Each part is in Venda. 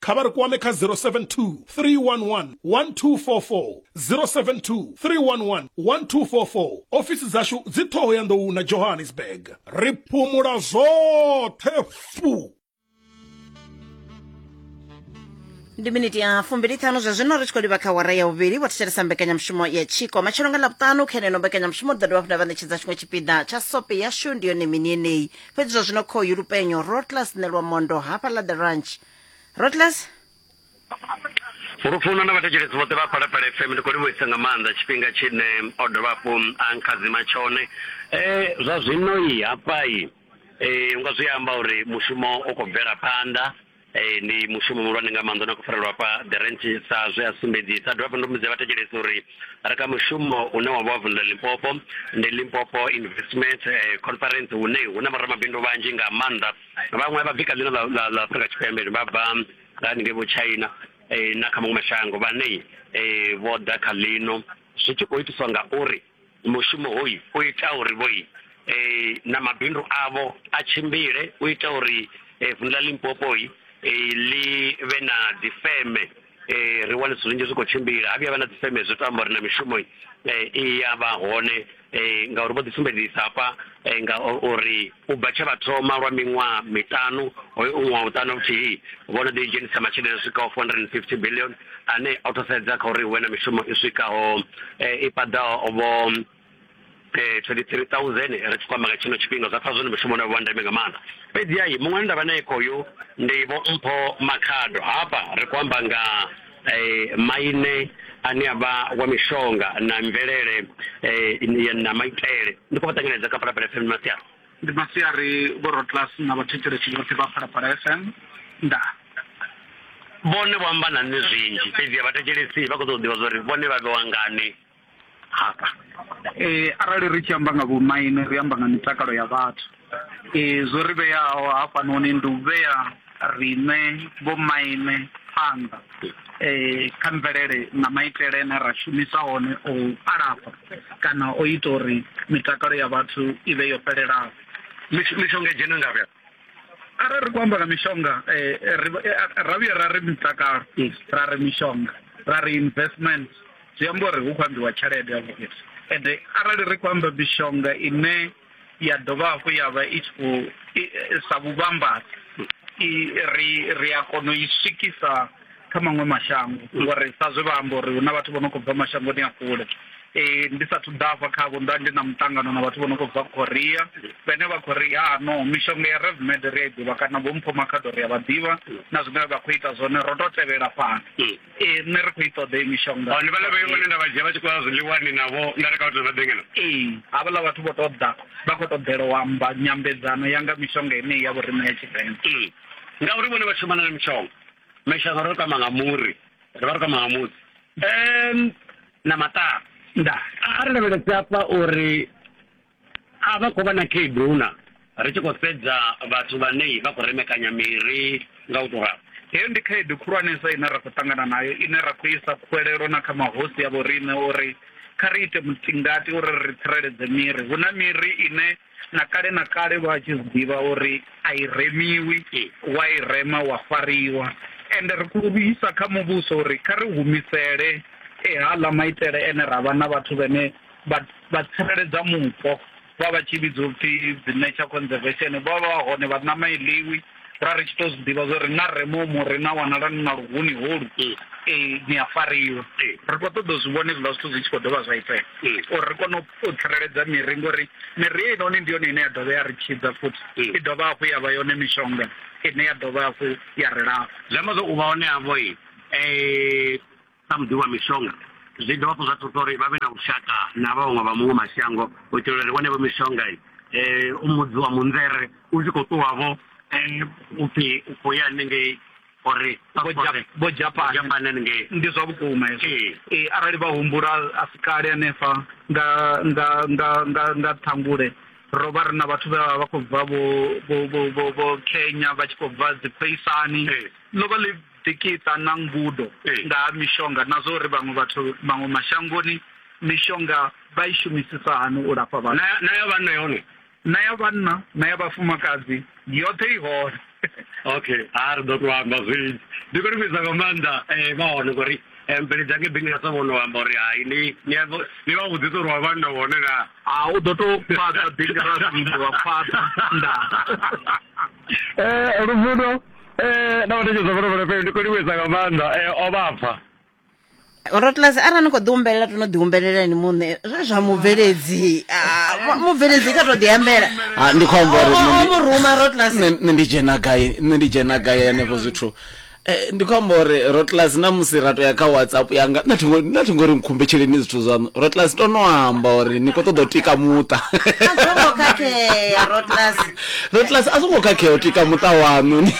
kha vha ri kwame kha 072 311 1244 072 311 1244 ofisi dzashu dzi ṱhoho ya nḓou na johannesburg ri phumula zwoṱhe fu ndi miniti ya fumbiliṱhanu zwa zwino ri tshi khou livha kha wara ya vhuvhili vho thetshelesa mbekanyamushumo ya tshiko matshelo nga lavhuṱanu kha eneno mbekanyamushumo ḓo dovha funa vha ṋetshedza tshiṅwe tshipiḓa tsha sope yashu ndi yone mini yeneyi fhedzi zwa zwino khoyu lupenyo rotlas nelwa mondo hafha ḽa the ranch rotlas lufuno na vhathetshelesi vhoṱhe vha phalaphala fm ndi khou livhuisa nga maanḓa tshifhinga tshine o dovha hafhu a nkhadzima tshone um zwa zwino i hafha i um nga zwi amba uri mushumo u khou bvela phanḓa Ee, ndi mushumo muhulwane nga maanḓa na khou farelwa hafha the ranch sa zwe a sumbedzisa dovha hafhu ndo mudza vhathetshelesi uri ri kha mushumo une wa vha wa vundu ḽa limpopo ndi limpopo investment eh, conference hune hu na vhoramabindu vhanzhi nga maanḓa vhaṅwe vha bvi kha ḽino ḽa ḽa afrika tshipembe vha bva nga haningei vho china eh, na kha maṅwe mashango vhane eh, vho ḓa kha ḽino zwi tshi khou itiswa ngauri mushumo hoyu u ita uri vho i eh, na mabindu avho a tshimbile u ita uri eh, vundu ḽa limpopo i eh, ḽi vhe na dzifeme eh, ri wane zwithu zwinzhi zwi khou tshimbila ha vhuya vha na dzifeme zwi to amba uri na mishumo eh, i ya vha hone eh, ngauri vho ḓisumbedzisa hafha eh, nga uri U bva tshe vha thoma lwa miṅwaha miṱanu, hoyu u ṅwaha vhuṱanu vhuthihi, vho no ḓi dzhenisa masheleni a swikaho R450 biḽioni ane o thusedza kha uri hu vhe na mishumo i swikaho i paḓaho vho 23,000. Ri tshi khou amba nga tshino tshifhinga, zwa pfa zwo no mushumo une wa vha wa ndeme nga maanḓa. Fhedziha muṅwe ane nda vha nae khoyu ndi Vho Mpho Makhado. Hafha ri khou amba nga. eh, maine ane a vha wa mishonga na mvelele eh, na maitele ndi khou vha ṱanganedza kha phalaphala fm masiari ndi masiari vhorotlas na vhathetshelesi vhoṱhe vha phalaphala fm nda vhone vho amba na nṋe zwinzhi fhedzi a vhathetshelesi vha khou ṱoḓa u ḓivha zwa uri vhone vha vhewa ngani Eh, arali ri tshi amba nga vhomaine ri amba nga mitakalo ya vhathu eh, zwo ri vheaho hafhanoni ndi u vhea riṋe vhomaine phanḓa eh, kha mvelele na maitele ane ra shumisa hone o alafha kana o ita uri mitakalo ya vhathu i vhe yo fhelelaho mishonga dzhena ngavhe arali ri khou amba nga mishonga eh, eh, eh, ra vhuya ra ri mutakalo ra ri mishonga ra ri investment zwi amba uri hu khou ambiwa tshelede yavho ende arali ri khou amba mishonga ine ya dovha hafhu ya vha i tshi khou sa vhuvhambadzi ri ri a kona u i swikisa kha maṅwe mashango ngori sa zwe vha amba uri hu na vhathu vho no khou bva mashangoni a kule eh, ndi sathu ḓafha khavho nda ndi na muṱangano na vhathu vho no khou bva korea vhene vha khou ri ha no mishonga ya revmed ri a i ḓivha kana vho mpho makhaḓo ri a vha ḓivha na zwine vha khou ita zwone ro to tevhela fhano eh, nṋe ri khou i ṱoḓa i mishonga ndi vhala vhayo vhane nda vha dzhia vha tshi khou ya zwiḽiwani navho nda reka vhathu vha ḓengena ee havhaḽa vhathu vho to ḓa vha khou ṱoḓela u amba nyambedzano ya nga mishonga yeneyi ya vhorine ya tshivenḓa ngauri vhone vha shumana na mishonga mashaka ro kwama nga muri ri vha ri kwama nga muri um na maṱaa nda a ri lavhelese afha uri a vha khou vha na khaedu na ri tshi khou sedza vhathu vhane vha khou remekanya miri nga u tou ralo heyo ndi khaedu khulwanesa ine ra khou ṱangana nayo ine ra khou isa khuwelelo na kha mahosi ya vhorine uri kha ri ite mutingati uri ri tsireledze miri hu na miri ine na kale na kale vha tshi zwi ḓivha uri a i remiwi wa i rema wa fariwa ende ri khou isa kha muvhuso uri kha ri humisele ehaḽa maitele ene ra vha na vhathu vhene vha tsireledza mupo vha vha tshi vhidzwa upfhi dzi nature conservation vha vha vha hone vha ṋama i ḽiwi ra ri tshi to zwi ḓivha zwa uri na re momo ri na wanala ni na luhuni holu mm. eh, ni a fariwa mm. ri khou ṱoḓa zwi vhone zwiḽa zwithu zwi tshi khou dovha zwa itea mm. uri ri kone u tsireledza miri ngori miri ye inoni ndi yone ine ya dovha ya ri tshidza futhi i dovha hafhu ya vha yone mishonga ine ya dovha hafhu ya ri lafha zwi amba zwa u vha hone havho i eh, Sa muḓivhi wa mishonga, zwi dovha hafhu zwa thusa uri vha vhe na vhushaka na vhaṅwe vha muṅwe mashango u itela uri wanevho mishonga u mudzi wa munzere u tshi khou ṱuwavho u pfhi u khou ya hanengei uri vho Japane hanengei. Ndi zwa vhukuma hezwo. Ee, arali vha humbula a si kale hanefha nga nga nga nga nga Ṱhangule ro vha ri na vhathu vhe vha vha vha khou bva vho vho vho vho vho Kenya vha tshi khou bva dzi khoisani ḽo vha ḽi Ḓikiṱa na ngudo nga ha mishonga na zwa uri vhaṅwe vhathu maṅwe mashangoni mishonga vha i shumisisa hani u lafha vhathu. Na ya vhanna yone? Na ya vhanna na ya vhafumakadzi yoṱhe i hone. Okay, ha ri ḓo tou amba zwinzhi. Ndi khou ni vhidza nga maanḓa vha hone ngori mvelele dza ngei Bingelesa vho no amba uri hai ni ni a ni vha vhudzisa uri wa vhanna u hone naa. Ha u ḓo tou fhaṱa Bingelasa muthu wa fhaṱa ndaa. Luvhilo. Eh na vhathu zwa vhona fhele ndi khou livhuisa nga maanḓa eh o vhapfa. Rotlase ara ni kho ḓi humbelela to no ḓi humbelela ni muṋe zwe zwa mubveledzi ah, mubveledzi kha to ḓi ambela ha ah, ndi khou amba uri nṋe ndi ruma Rotlase nṋe ndi dzhena gai nṋe ndi dzhena gai henefho zwithu Eh, ndi khou amba uri rotlas na musi ra to ya kha whatsapp yanga na thi ngori nkhumbetsheleni zwithu zwaṋu rotlas to no amba uri ni khou ṱoḓa u tika muṱa Lord Class a songo khakhea u tika muṱa waṋu ni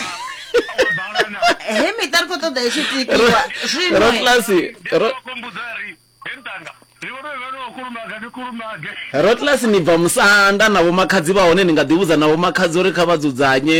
he miṱa ri khou ṱoḓa i tshi tikiwa zwino Lord Class ro Rotlas ni bva musanda na vho makhadzi vha hone ni nga ḓi vhudza na vho makhadzi uri kha vha dzudzanye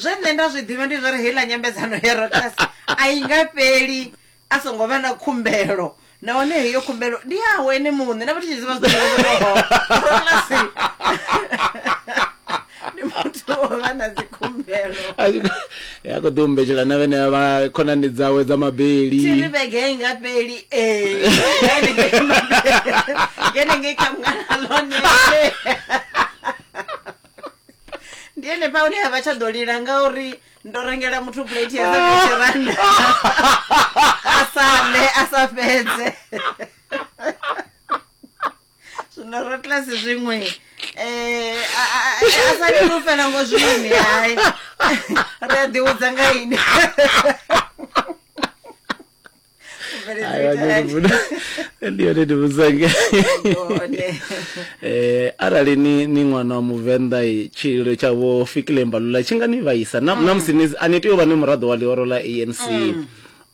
zwe nṋe nda zwi ḓivha ndi zwa uri heiḽa nyambedzano ya rotas a i nga fheli a songo vha na khumbelo nahone heyo khumbelo ndi yawe ene muṋe na vha tshi ziva zwirotlasi ndi muthu o vha na dzikhumbelo ya khou ḓi umbetshela na vhene vha khonani dzawe dza mabeli tiri vhege i nga fheli ee ngene ngei kha mngana lone ndi henefha hune ha vha tsha ḓo lila ngauri ndo rengela muthu plate ya za fifty rand a sa ḽe a sa fhedze zwino ro tlasi zwiṅwe um a sa lili u fela ngo zwini hai ri a ḓiwudza nga ini ndi yone ndi vhudzange eh arali ni ni ṅwana wa muvenḓa tshililo tsha vho fikile mbalula tshi nga ni vhaisa na mm. musi ni a ni tea u vha ni muraḓo wa ḽihoro ḽa anc mm.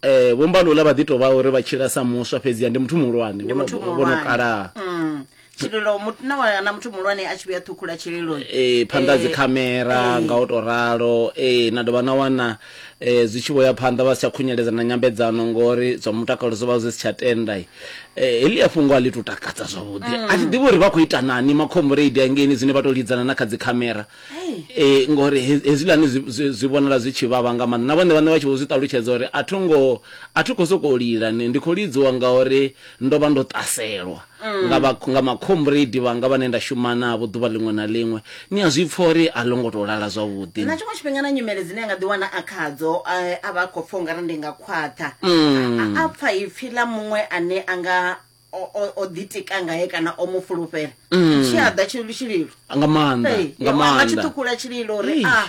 eh vho mbalula vha ḓi tou vha uri vha tshila sa muswa fhedzi ya ndi muthu muhulwane vho no kalaha mm. tshililo mut- na wa- na muthu muhulwane a tshi vhuya ṱhukhula tshililo eh phanḓa ha dzikhamera nga u to ralo eh na dovha na wana eh zwi tshi vho ya phanḓa vha si tsha khunyeledza na nyambedzano ngori zwa mutakalo zwo vha zwi si tsha tenda eh heḽi a fhungo a ḽi to takadza zwavhuḓi a thi ḓivhi uri vha khou ita nani makhombureidi angeni zwine vha to lidzana na kha dzikhamera eh ngori he- hezwiḽani zwi- zwi zwi vhonala zwi tshi vhavha nga maanḓa na vhone vhane vha tshi vho zwi ṱalutshedza uri a tho ngo a thi khou sokou lila ni- ndi khou lidziwa ngauri ndo vha ndo ṱaselwa mm. nga, vha, nga makhombredi vhanga vhane nda shuma navho ḓuvha ḽiṅwe na ḽiṅwe ni a zwi pfa uri a ḽo ngo tou lala zwavhuḓi na tshiṅwe tshifhinga na nyimele dzine a nga ḓiwana a khadzo eh, a vha a khou pfa u nga ri ndi nga khwaṱha mm. a pfa ipfhi ḽa muṅwe ane a nga o ḓitika ngae kana o mu fulufhela mm. tshi a ḓa tshililo nga maanḓa nga maanḓa tshi ṱhukhula tshililo uri a ah,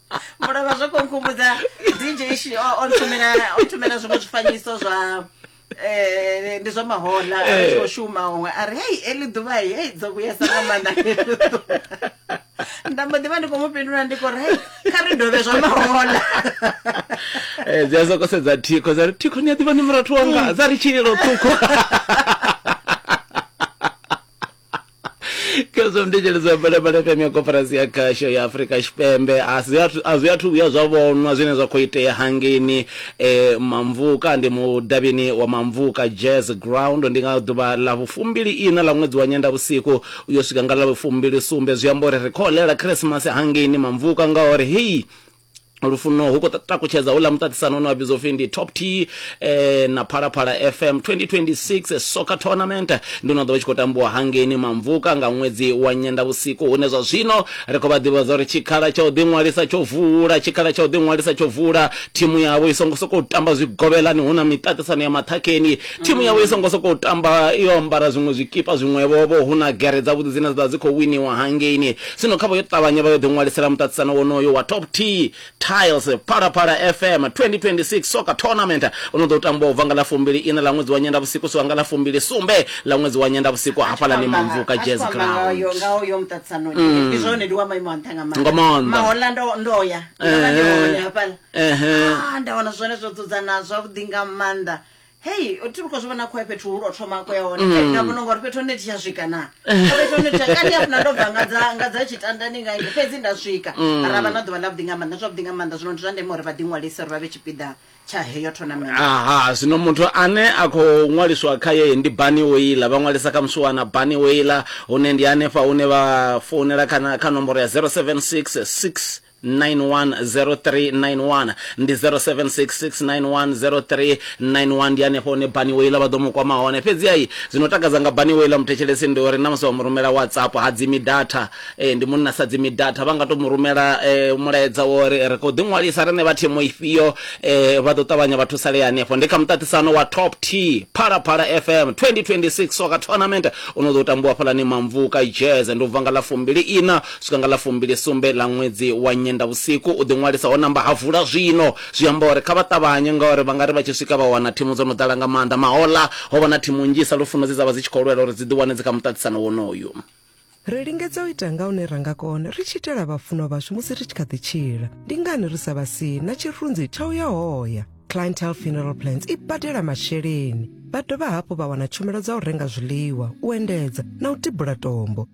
mulovha zwo khou nkhumbudza dj shi o o nthumela o nthumela zwiṅwe zwifanyiso zwa eh ndi zwa mahola a tshi khou shuma huṅwe a ri hei eli ḓuvha hei hei dzo vhuyesa nga maanḓa heḽi ḓuvha." nda mbo ḓi vha ndi khou mu fhindula ndi khou ri hei kha ri dovhe zwa mahola Eh, dzi a soko sedza thikho dza ri thikho ni a ḓivha ni murathu wanga dza ri tshililo ṱhukhu khezwo mndetsheledzwa balabala fm ya koporasi ya khasho ya afurika tshipembe a zwi athu- a zwi athu vhuya zwa vhonwa zwine zwa khou itea hangeni eh, mamvuka ndi mudavhini wa mamvuka jazz ground ndi nga ḓuvha ḽa vhufumbili ina ḽa ṅwedzi wa nyenda vhusiku uyo swika nga ḽa vhufumbili sumbe zwi amba uri ri khou ḽela khirisimasi hangeni mamvuka ngauri hei lufuno hu khou takutshedza houḽa muṱaṱisano une wa vhidzwa upfhi ndi top t eh, na phalaphala fm 2026 soccer tournament ndi no ḓo vha tshi khou tambiwa hangeni mamvuka nga ṅwedzi wa nyendavhusiku hune zwa zwino ri khou vha ḓivhadza uri tshikhala tsha u ḓiṅwalisa tsho vula tshikhala tsha u ḓiṅwalisa tsho vula thimu yavho i songo sokou tamba zwigovhelani hu na miṱaṱisano ya maṱhakheni thimu yavho i songo sokou tamba yo ambara zwiṅwe zwikipa zwiṅwevhovho hu na gere dzavhuḓi dzine dza vha dzi khou winiwa hangeni Zwino khavho yo ṱavhanya vha yo ḓiṅwalisela muṱaṱisano wonoyo wa Top T Tiles Phalaphala FM 2026 Soccer Tournament u no ḓo tambwa u bva nga ḽa fumbili iṋa ḽa ṅwedzi wa Nyendavhusiku swika nga ḽa fumbili sumbe ḽa ṅwedzi wa Nyendavhusiku hafhaḽani Mamvuka Jazz Ground. Nga maanḓa. Ehe. Ehe. hei ti vhukho zwi vhona khoe fhethu hu lwo thoma khoe hone mm. nda vhona ngori fhethu hone ti tsha swika na fhethu hone tsha kani hafuna ndo bva nga dza nga dza tshitandani nga ngi fhedzi nda swika mm. ra vha na ḓuvha ḽa vhuḓi nga maanḓa zwavhuḓi nga maanḓa zwino ndi zwa ndeme uri vha ḓi ṅwalise uri vha vhe tshipiḓa tsha heyo tournament aha zwino muthu ane a khou ṅwaliswa kha ye ndi bani oila vha ṅwalisa kha musi wana bani oila hune ndi hanefha hune vha founela kha nomboro ya 076 6 910391 ndi 0766910391 ndi hanefho hune bani weila vha ḓo mu kwama hone fhedzi ai zwino takadza nga bani weila muthetshelesi ndi uri na musi wa mu rumela whatsapp ha dzimi data eh, ndi munna sa dzimi data vha nga to mu rumela eh, mulaedza wa uri ri khou ḓiṅwalisa rine vha thimu ifhio eh, vha ḓo ṱavhanya vha thusalea hanefho ndi kha muṱaṱisano wa top t phalaphala fm 2026 soka tournament u no ḓo tambiwa fhalani mamvuka jazz ndi u bva nga ḽa fumbili ina swika nga ḽa fumbili sumbe ḽa ṅwedzi wa nyendavhusiku u ḓiṅwalisa ho namba ha vula zwino zwi amba uri kha vha ṱavhanye ngauri vha nga ri vha tshi swika vha wana thimu dzo no ḓala nga maanḓa mahoḽa ho vha na thimu nnzhi sa lufuno dze dza vha dzi tshi khou lwela uri dzi ḓi wane dzi kha muṱaṱisano wonoyu. Ri lingedza u ita nga hune ra nga kona ri tshi itela vhafunwa vhashu musi ri tshi kha ḓi tshila. Ndi ngani ri sa vha sii na tshirunzi tsha u ya hoya? Clientele Funeral Plans i badela masheleni, vha dovha hafhu vha wana tshumelo dza u renga zwiḽiwa, u endedza na u tibula tombo.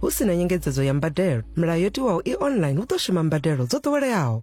hu si na nyengedzedzo ya mbadelo milayo yo tiwaho i online hu ḓo shuma mbadelo dzo ḓoweleaho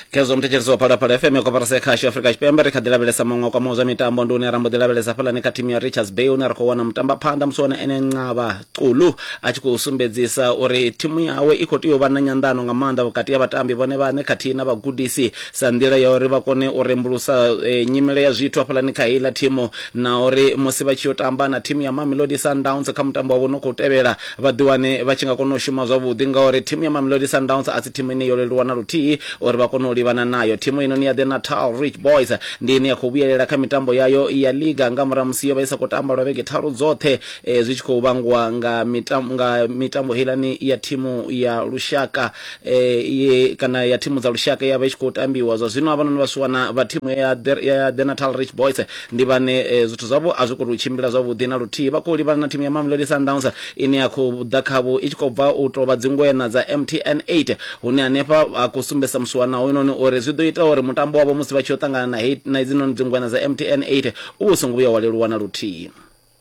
khezwo muthetshelesi wa phalaphala fm ya koporasi ya khasho afrika tshipembe ri kha ḓi lavhelesa maṅwe kwamaho zwa mitambo ndi une ra mbo ḓi lavhelesa fhalani kha thimu ya richards bay une ri khou wana mutambaphanḓa musi wana ene ncaba Xulu a tshi khou sumbedzisa uri thimu yawe i khou tea u vha na nyanḓano nga maanḓa vhukati ha vhatambi vhone vhaṋe khathihi na vhagudisi sa nḓila ya uri vha kone u rembulusa e, nyimele ya zwithu hafhaḽani kha heiḽa thimu na uri musi vha tshi yo tamba na thimu ya Mamelodi Sundowns kha mutambo wavho no khou tevhela vha ḓiwane vha tshi nga kona u shuma zwavhuḓi ngauri thimu ya Mamelodi Sundowns a si thimu ine yo leluwa na luthihi uri vha kone u livhana nayo thimu ino ni ya The Natal Rich Boys ndi ine ya khou vhuyelela kha mitambo yayo ya liga nga murahu musi yo vha i sa khou tamba lwa vhege tharu dzoṱhe e, zwi tshi khou vhangwa nga mitambo nga mitambo heilani ya thimu ya lushaka e, ye kana ya thimu dza lushaka ya vha i tshi khou tambiwa zwa zwino havhanoni vhasiwana vha thimu ya ya the natal rich boys ndi vhane e, zwithu zwavho a zwi khou tou tshimbila zwavhuḓi na luthihi vha khou livhana na thimu ya mamelodi sundowns ine ya khou ḓa khavho i tshi khou bva u tou vha dzingwena dza mtn 8 hune hanefha a khou sumbedzisa musiwana hoyunoni uri zwi ḓo ita uri mutambo wavho musi vha tshi yo ṱangana na hedzinoni dzingwena dza mtn 8 u vho songo vhuya wa leluwa na luthihi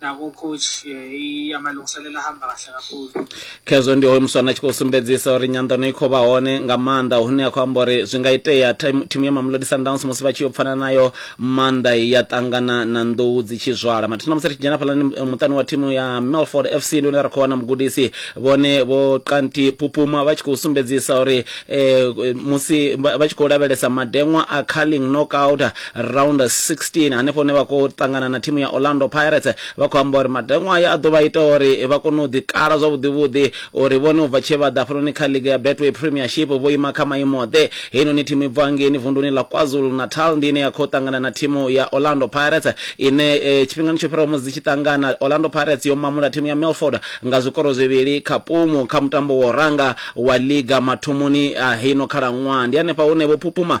nako coach i amalungiselelo ahamba kahle kakhulu khezwo ndi hoyo muswana a tshi khou sumbedzisa uri nyanḓano i khou vha hone nga maanḓa hune a khou amba uri zwi nga itea thimu ya mamlodi sundowns musi vha tshi yo pfana nayo maanḓa ya ṱangana na nḓou dzi tshi zwala mathina musi ri tshi dzhena fhalani eh, muṱani wa thimu ya melford fc ndi hune ra khou wana mugudisi vhone vho kanti pupuma vha tshi khou sumbedzisa uri eh, musi vha tshi khou lavhelesa madeṅwa a carling knockout Round 16 hanefho hune vha khou ṱangana na thimu ya Orlando Pirates vha khou amba uri matengo aya a ḓo vha ita uri vha kone u ḓikala zwavhuḓivhuḓi uri vhone u bva tshe vha ḓa hafhanoni kha liga ya Betway Premiership vho ima kha maimo-ḓe. Heinoni thimu i bvaho ngeini vunduni ḽa KwaZulu-Natal ndi ine ya khou ṱangana na thimu ya Orlando Pirates ine tshifhingani tsho fhiraho musi dzi tshi ṱangana Orlando Pirates yo mamula thimu ya Milford nga zwikoro zwivhili kha pumu kha mutambo wa u ranga wa liga mathomoni a heino khalaṅwaha. Ndi hanefha hune Vho Phuphuma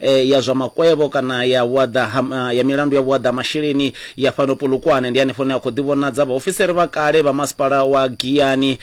ya zwa makwevho kana ya vhuaḓa ha, ya milandu ya vhuaḓa ha masheleni ya fhano Polokwane. Ndi hanefho hune ha khou ḓivhonadza vhaofisiri vha kale vha masipala wa Giyani,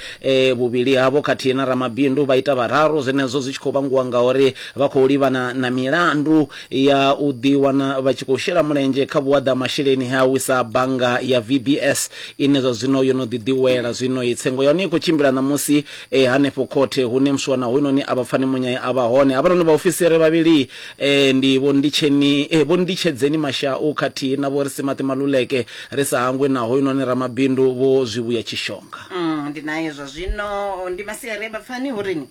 vhuvhili havho khathihi na ramabindu vha ita vhararu, zwenezwo zwi tshi khou vhangiwa ngauri vha khou livhana na milandu ya u ḓiwana vha tshi khou shela mulenzhe kha vhuaḓa ha masheleni he a wisa bannga ya VBS ine zwa zwino yo no ḓi ḓiwela. Zwino-i tsengo ya hone i khou tshimbila ṋamusi e hanefho khothe hune muswana hoyunoni a vha pfani munyai a vha hone havhanoni vhaofisiri vhavhili e ndi vho nditsheni e vho nditshedzeni mashau khathihi na vho ri si maṱi maluleke ri sa hangwi na hoyunoni ramabindu vho zwivhuya tshishonga Mm, ndi naye zwa zwino ndi masiari a vhapfani hu rini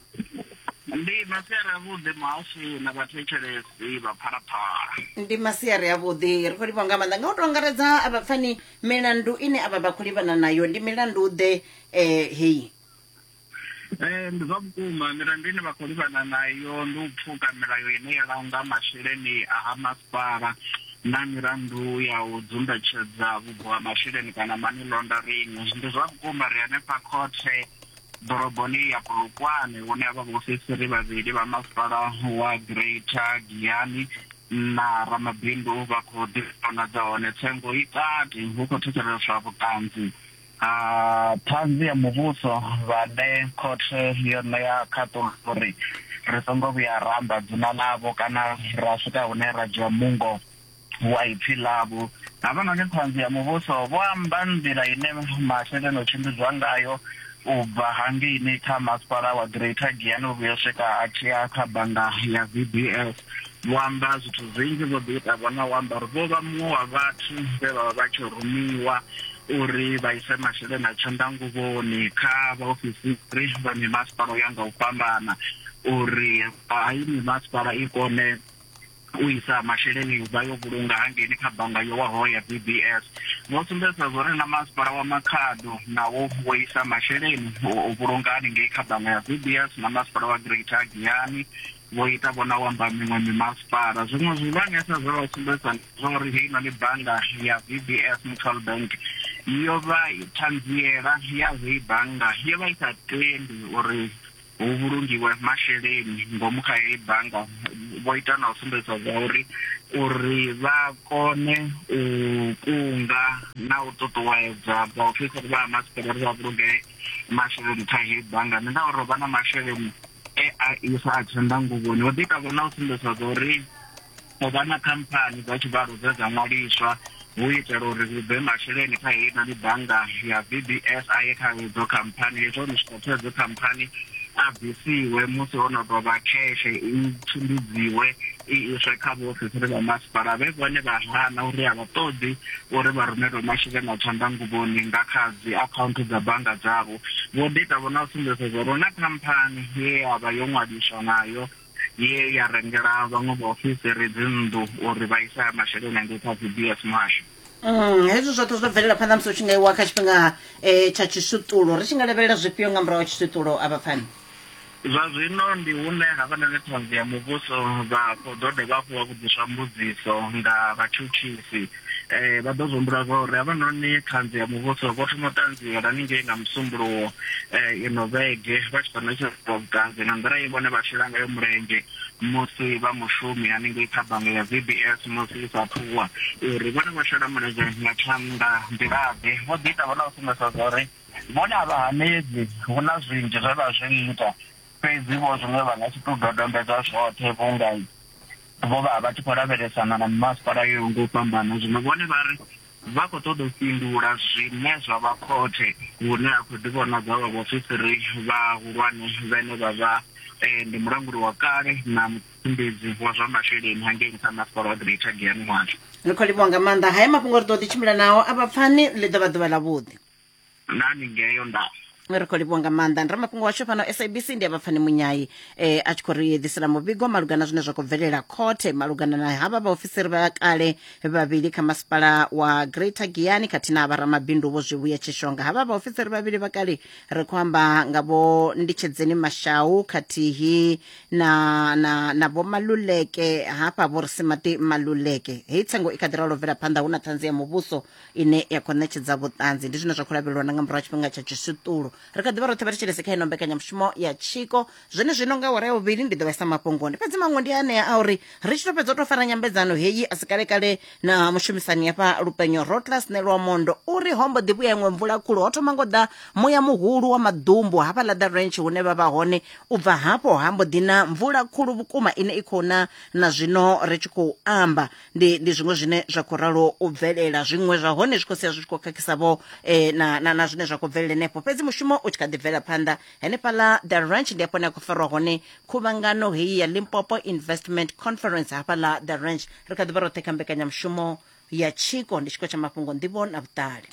Ndi masiari avhuḓi muhasho na vhathetshelesi vha phalaphala. ndi masiari avhuḓi ri khou livha nga maanḓa nga u to angaredza a vhapfani milandu ine avha vha khou livhana nayo ndi milandu ḓe eh, heyi Ee, ndi zwa vhukuma milandu ine vha khou livhana nayo ndi u pfuka milayo ine ya langa masheleni a ha masipala na milandu ya u dzumbetshedza vhubvo ha masheleni kana money laundering. Ndi zwa vhukuma ri hanefha khothe ḓoroboni ya Polokwane hune ha vha vhaofisiri vhavhili vha masipala wa Greater Giyani na ramabindu vha khou ḓi vhonadza hone tsengo i kati, hu khou thetsheleswa vhuṱanzi. A Ṱhanzi ya Muvhuso vhane khothe yo ṋea khaṱulo uri ri songo vhuya ra amba dzina ḽavho kana ra swika hune ra dzhia mungo wa ipfi ḽavho. Havhanoni Ṱhanzi ya Muvhuso vho amba nḓila ine masheleni o tshimbidzwa ngayo u bva hangeini kha Masipala wa Greater Giyani u vhuya u swika a tshi ya kha bannga ya VBS. Vho amba zwithu zwinzhi zwo ḓi ita vhona u amba uri vho vha muṅwe wa vhathu vhe vha vha vha tshi rumiwa uri vha ise masheleni a tshanḓanguvhoni kha vhaofisiri vha mimasipala u ya nga u fhambana uri hayi mimasipala i kone u isa masheleni vha yo vhulunga hangeini kha bannga yo waho ya BBS. Vho sumbedzisa zwo ri na masipala wa Makhado nawo wo isa masheleni u vhulunga haningei kha bannga ya BBS na masipala wa Greater Giyani vho ita vho na u amba miṅwe mimasipala. Zwiṅwe zwivhangesa zwe vha sumbedzisa ndi zwa uri heinoni bannga ya VBS Mutual Bank yo vha ṱhanziela ya heyi bannga yo vha i sa tendi uri hu vhulungiwe masheleni ngomu kha heyi bannga, vho ita na u sumbedzisa zwa uri uri vha kone u kunga na u ṱuṱuwedza vhaofisiri vha ha masipala uri vha vhulunge masheleni kha heyi bannga ndi ngauri ho vha na masheleni e a isa a tshanḓa nguvhoni ho ḓi kavha na u sumbedzwa zwa uri o vha na khamphani dza tshivhalo dze dza ṅwaliswa hu itela uri hu bve masheleni kha heyi nani bannga ya vbs a ye kha hedzo khamphani hezwo o no swika kha hedzo khamphani a bvisiwe musi ho no tou vha kheshe i tshimbidziwe i iswe kha vhaofisiri vha masipala vhe vhone vha hana uri a vha ṱoḓi uri vha rumelwe masheleni a tshanḓanguvhoni nga kha dzi akhaunthu dza bannga dzavho Vho Dieter vho na sumbedza zwa uri hu na khamphani ye ya vha yo ṅwaliswa nayo ye ya rengela vhaṅwe vhaofisiri dzinnḓu uri vha ise masheleni angei kha VBS Muhasho. Mm, hezwi zwoṱhe zwo bvelela phanḓa musi hu tshi nga iwa kha tshifhinga eh, tsha tshishuṱulo ri tshi nga lavhelela zwifhio nga murahu ha tshishuṱulo a vhapfani Zwa zwino ndi hune havhanoni Ṱhanzi ya Muvhuso vha khou ḓo dovha hafhu vha vhudziswa mbudziso nga vhatshutshisi. Vha ḓo humbula zwa uri havhanoni Ṱhanzi ya Muvhuso vho thoma u ṱanziela haningei nga Musumbuluwo ino vhege vha tshi khou ṋetshedzwa vhuṱanzi nga nḓila ye vhone vha shela ngayo mulenzhe musi vha mushumi haningei kha bannga ya VBS musi i sa athu wa, uri vhone vho shela mulenzhe nga tshanḓa nḓila-ḓe. Vho ḓi ita vhone vha sumbedzisa zwa uri. Vhone a vha hanedzi, hu na zwinzhi zwe vha zwi ita, fhedzi vho zwiṅwe vha nga si tou dodombedza zwoṱhe vhunga vho vha vha tshi khou lavhelesana na mimasipala yo yaho nga u fhambana. Zwino vhone vha ri vha khou ṱoḓa u fhindula zwine zwa vha khothe hune ha khou ḓivhonadza vha vhaofisiri vhahulwane vhane vha vha ndi mulanguli wa kale na mutshimbidzi wa zwa masheleni hangei nṱha ha Masipala wa Greater Giyani Mwatsho. Ri khou livhuwa nga maanḓa. Haya mafhungo ri ḓo ḓi tshimbila nao a vha pfani ḽi ḓo vha ḓuvha ḽavhuḓi. nani ngeyo nda ri khou livhuwa nga maanḓa ndi ramafhungo washu fhano sabc ndi avhapfani munyayi eh, a tshi khou ri ḓisela muvhigo malugana zwine zwa khou bvelela khothe malugana na havha vhaofisiri vha kale vhavhili kha masipala wa greater giyani khathihi na vharamabindu vho zwivhuya tshishonga havha vhaofisiri vhavhili vha kale ri khou amba nga vho nditshedzeni mashau khathihi na na na vho maluleke hafha vho risimaṱi maluleke hei tsengo i kha ḓi ralo bvela phanḓa hu na ṱhanzi ya muvhuso ine ya khou ṋetshedza vhuṱanzi ndi zwine zwa khou lavhelelwa na nga murahu ha tshifhinga tsha tshiswiṱulo ri kha ḓivha roṱhe vha thetshelese kha ino mbekanyamushumo ya tshiko zwone zwino nga wara ya vhuvhili ndi ḓo vhesa mafhungoni fhedzi maṅwe ndi anea a uri ri tshi to fhedza u to fara nyambedzano heyi a si kalekale na mushumisani hafha lupenyo rotlas nelwa mondo uri hombo ḓi vhuya iṅwe mvula khulu ho thoma ngo ḓa muya muhulu wa maḓumbu hafha ḽa the ranch hune vha vha hone u bva hafho hambo ḓi na mvula khulu vhukuma ine i khou na na zwino ri tshi khou amba ndi ndi zwiṅwe zwine zwa khou ralo u bvelela zwiṅwe zwa hone zwi khou sia zwi tshi khou khakhisa vho eh, na, na, na zwine zwa khou bvelela henefho fhedzi mushumo u tshi kha ḓi bvela phanḓa henefhaḽa the ranch ndi hafho ne a khou farwa hone khuvhangano heyi ya limpopo investment conference hafhaḽa the ranch ri kha ḓi vha roṱhe kha mbekanyamushumo ya tshiko ndi tshiko tsha mafhungo nḓivho na vhuṱali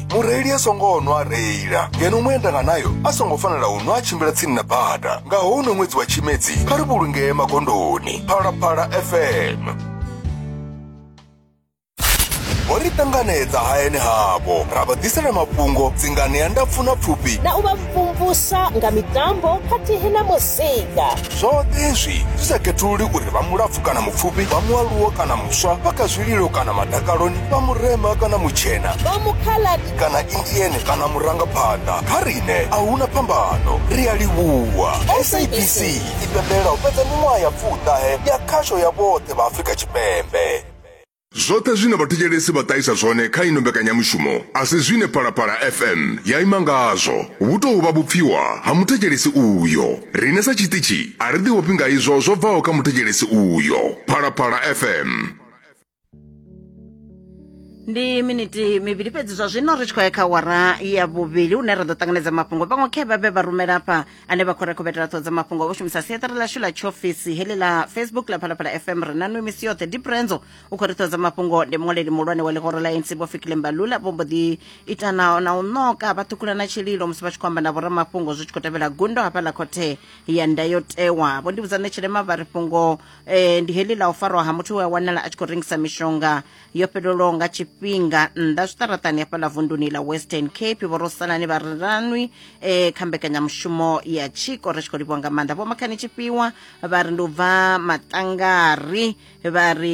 mureili a songo nwa a reila ngeno muendanga nayo a songo fanela u nwa a tshimbila tsini na bada nga houno ṅwedzi wa tshimedzi kha ri vhulungee magondoni phalaphala fm vho ri ṱanganedza hayani havho ra vha ḓisela mafhungo dzinganea ndapfu na pfufhi na u vha vhumvusa nga mitambo khathihi na muzika zwoṱhe hezwi zwi sa khethululi uri vha mulapfu kana mupfufhi vha mualuwo kana muswa vha kha zwililo kana madakaloni vha murema kana mutshena vha mukhaladi kana indiene kana murangaphanḓa kha riṋe a hu na phambano ri a livhuwa sabc i pembela u fhedza miṅwaha ya pfuṱahe ya khasho ya vhoṱhe vha afrika tshipembe Zwoṱhe zwine vhathetshelesi vha ṱahisa zwone kha ino mbekanyamushumo a si zwine Phalaphala FM ya ima ngazwo. Vhu tou vha vhupfiwa ha muthetshelesi uyo. Riṋe sa tshiṱitshi a ri ḓiofhi nga izwo zwo bvaho kha muthetshelesi uyo. Phalaphala FM. ndi miniti mivhili fhedzi zwa zwino ri tshi khou ya kha wara ya vhuvhili hune ra ḓo ṱanganedza mafhungo vhaṅwe khe vha vhe vha rumela hafha ane vha khou ri khobetela ṱhoho dza mafhungo vho shumisa siaṱari ḽashu ḽa tshiofisi heḽi ḽa facebook ḽa phalaphala fm ri na nwe misi yoṱhe diprenzo u khou ri ṱhoho dza mafhungo ndi muṅwaleli muhulwane wa ḽihoro ḽa nc vho fikile mbalula vho mbo ḓi ita na na u ṋoka vha ṱhukhula na tshililo musi vha tshi khou amba na vhoramafhungo zwi tshi khou tevhela gundo hafha ḽa khothe ya ndayotewa vho ndivhudzane tshilema vha ri fhungo eh, ndi heḽi ḽa u farwa ha muthu we a wanala a tshi khou rengisa mishonga yo fhelelwaho nga tshifhinga nnḓa zwiṱaraṱani hafhaḽa vunduni ḽa western cape vho rosalani vha riranwi eh, kha mbekanyamushumo ya tshiko ri tshi khou livhiwa nga maanḓa vho makhani tshifhiwa vha ri ndi u bva matangari vha ri